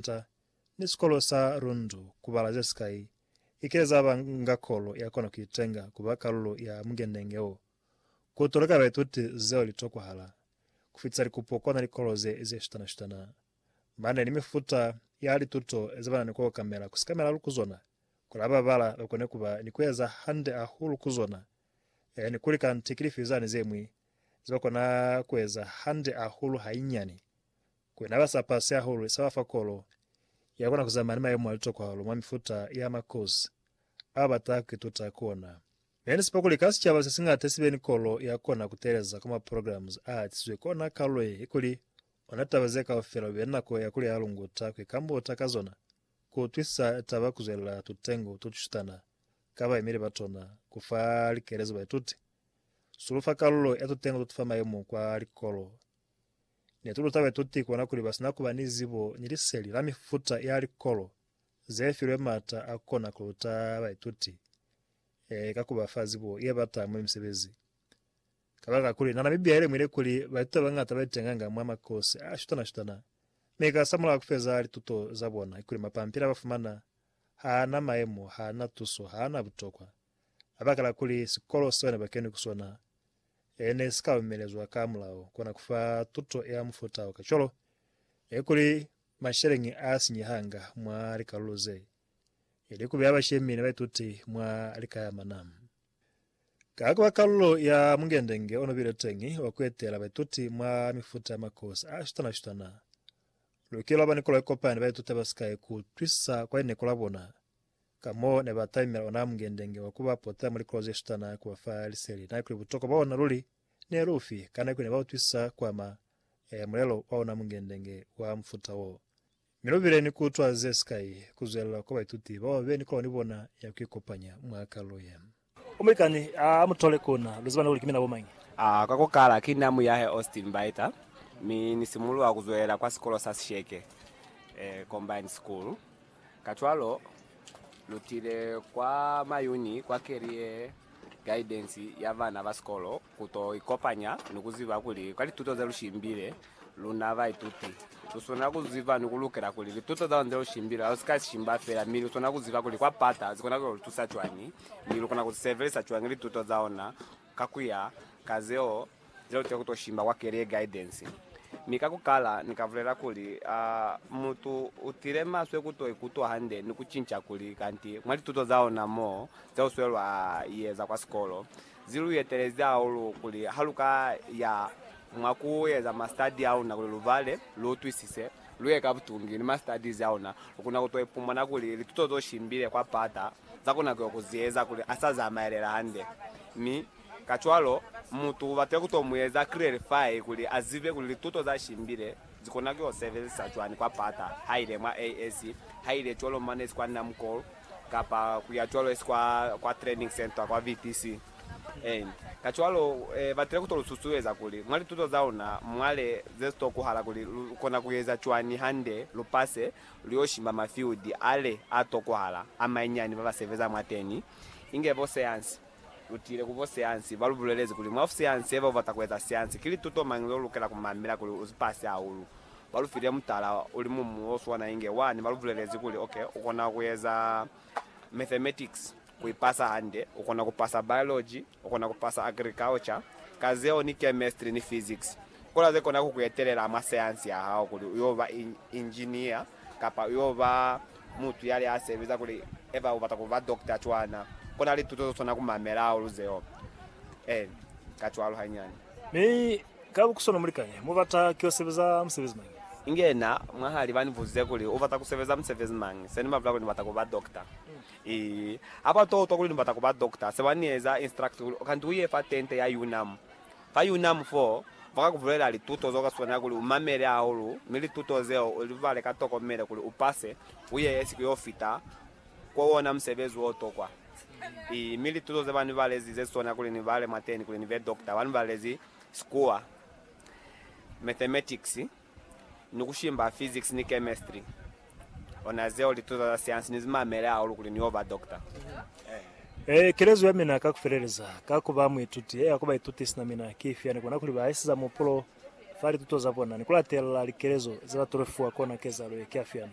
Santa ni sikolo sa Rundu ku bala ze sikai, i kile za ba nga kolo ya kona ku itenga ku ba kalulo ya mukenenge wo. Ku toleka baituti zeo li tokwahala. Ku fitisa likupo kona likolo ze ze shutana-shutana, ba ne ni mifuta ya lituto ze ba na ni ku okamela ku sikamelahu ku zona, kuli ha ba bala ba kone ku ba ni ku eza hande hahulu ku zona, e ni kuli kanti ki lifi zani ze ñwi ze ba kona ku eza hande hahulu hainyani Kwena ba sa pasi hahulu sa ba fa kolo ya kona ku zamaya ni mayemo a litokwa hahulu mwa mifuta ya makozi ao ba taha ku ituta ku ona. Ne ni sepa kuli ka sicaba se siñata si be ni kolo ya kona ku teeleza kwa maprograms a hatisizwe ki ona kalulo ye i kuli ona taba ze kaufela kube ni nako ya kuli a lunguta ku ikambuta ka zona, ku utwisisa taba ku zwelela tutengo to tushutana ka baimeli ba tona, ku fa likelezo baituti. Sulufa kalulo ya tutengo to tu fa mayemo kwa likolo. Ne tu luta baituti kona kuli ba si na ku ba ni zibo ni liseli la mifuta ya likolo ze filwe m'ata a ku kona ku luta baituti ee, ka ku ba fa zibo ye bata mwa misebezi. Kabakakuli, nana Bibia i lemuhile kuli baituti ba bañata ba itenganga mwa makosi a shutana-shutana, mi ka samulaho ku feza lituto za bona kikuli mapampili a ba fumana ha a na maemo, ha a na tuso, ha a na butokwa. Kabakala kuli sikolo seo nebakeni ku sona ne si ka lumelezwa ka mulao kona kufa tuto ya mufuta wo, kacwalo ne kuli masheleñi a sinyehanga mwa likalulo ze, ili kubeya bashemi ni baituti mwa likayamana. Ka kuba kalulo ya mungendenge onobile teñi wa kuetela baituti mwa mifuta ya makosi a shutana-shutana, lukile lwaba ni kolo yekopani baituti abasika ye kuutwisisa kwa lineko labona Ka mo ne ba taimela ona mungende-nge wa ku ba pota muli krozi ye sutana ku ba fa liseli na kuli butokwa bwa ona luli ne lu fi, kana kuli ne ba utwisisa kwa ma e mulelo wa ona mungende-nge wa mufuta wo. Mi lu bile ni ku utwa ze sikai ku zwelela kwa baituti bao ba be ni kolwa ni bona ya ku ikopanya mwa kalulo ye. Umulikani a mu tole ku na. Lu ziba na kuli ki mina bo mañi? A ka ku kala, ki na muyahe Austin Baeta, mi ni simuluha ku zwelela kwa sikolo sa sisheke, Combined School. Kacwalo, lu tile kwa Mayuni kwa Career Guidance ya bana ba sikolo ku to ikopanya ni ku ziba kuli kwa lituto ze lu shimbile, Luna baituti, lu swana ku ziba ni ku lukela kuli lituto za luna ze lu shimbile lu si ka shimba feela, mi lu swana ku ziba kuli kwa pata zi kona ku yo lu tusa cwañi, mi lu kona ku si sebelisa cwañi lituto za luna ka ku ya ka zeo ze lu tile ku to shimba kwa Career Guidance. Mi ka ku kala, ni ka bulela kuli, a mutu u tile maswe ku to ikutwa hande ni ku cinca kuli kanti mwa lituto za luna mo ze lu swelwa i eza kwa sikolo, Zi lu etelezi hahulu kuli ha lu ka ya mwa ku eza masitadi a luna kuli lu bale, lu utwisise, lu ye ka butungi ni masitadizi a luna. Lu kona ku to ipumana kuli lituto z'o shimbile kwa pata za kona ku yo ku zi eza kuli a sa zamaelela hande. Mi, kacwalo, mutu u batile ku to mu eza klerifai kuli a zibe kuli lituto za shimbile zi kona ku yo sebelisa cwani kwa pata, ha ile mwa AS, ha ile cwalo mwa Nurse kwa Namcol, kapa ku ya cwalo esi kwa, kwa training centre kwa VTC, and kacwalo eh, batile kuto lu susueza kuli mwa lituto za luna mwale ze sito kuhala kuli lu kona ku eza cwani hande lu pase lu yo shimba ma field ale a to kuhala a mainyani ba ba sebeza mwateni, inge bo seansi. Lutile ku bo siansi, ba lu bulelezi kuli, Mwa siansi haiba u bata ku eza siansi, ki lituto mañi leo lukela ku mamela kuli u zipase hahulu? Ba lu file mutala u li mumu o swana inge wani, ba lu bulelezi kuli, Ok, u kona ku eza mathematics ku i pasa hande, u kona ku pasa biology, u kona ku pasa agriculture, ka zeo ni chemistry ni physics. Kola ze kona ku ku etelela mwa siansi ya hao kuli u yo ba engineer kapa u yo ba Mutu yale a sebeza kuli eba u bata ku ba dokta cwana, ko na lituto zo swana ku mamela hahulu zeo. Ee, kacwalo hanyani. Mi ka bukuswana mulikani mu bata ki yo sebeza musebezi mañi? Inge na mwahali ba ni buzize kuli, U bata ku sebeza musebezi mañi? Se ni ba bulela kuli ni bata ku ba dokta. Ii. Ha ba to utwa kuli ni bata ku ba dokta, se ba ni eza instruct kuli, Kanti u ye fa tente ya UNAM. Ka Unam fo, ba ka ku bulelela lituto zeo ka swanela kuli u mamele hahulu mi lituto zeo u li bale ka tokomelo kuli u pase, u yeye siku yo fita kwo wona musebezi wo tokwa. I, mi lituto ze ba ni balezi ze swanela kuli ni bale mwateni kuli ni be dokta, ba ni balezi sikuwa, mathematics, ni ku shimba physics ni chemistry ona zeo lituto za siansi ni zi mamele hahulu kuli ni yo ba doctor. Ee, kelezo ya mina ka ku feleleza ka ku ba muituti e ya ku baituti sina mina ki ifi ya ni bona kuli ba isiza muhupulo fa lituto za bona ni ku latelela likelezo ze ba tolofiwa kona kezalo ye ki ya fihani?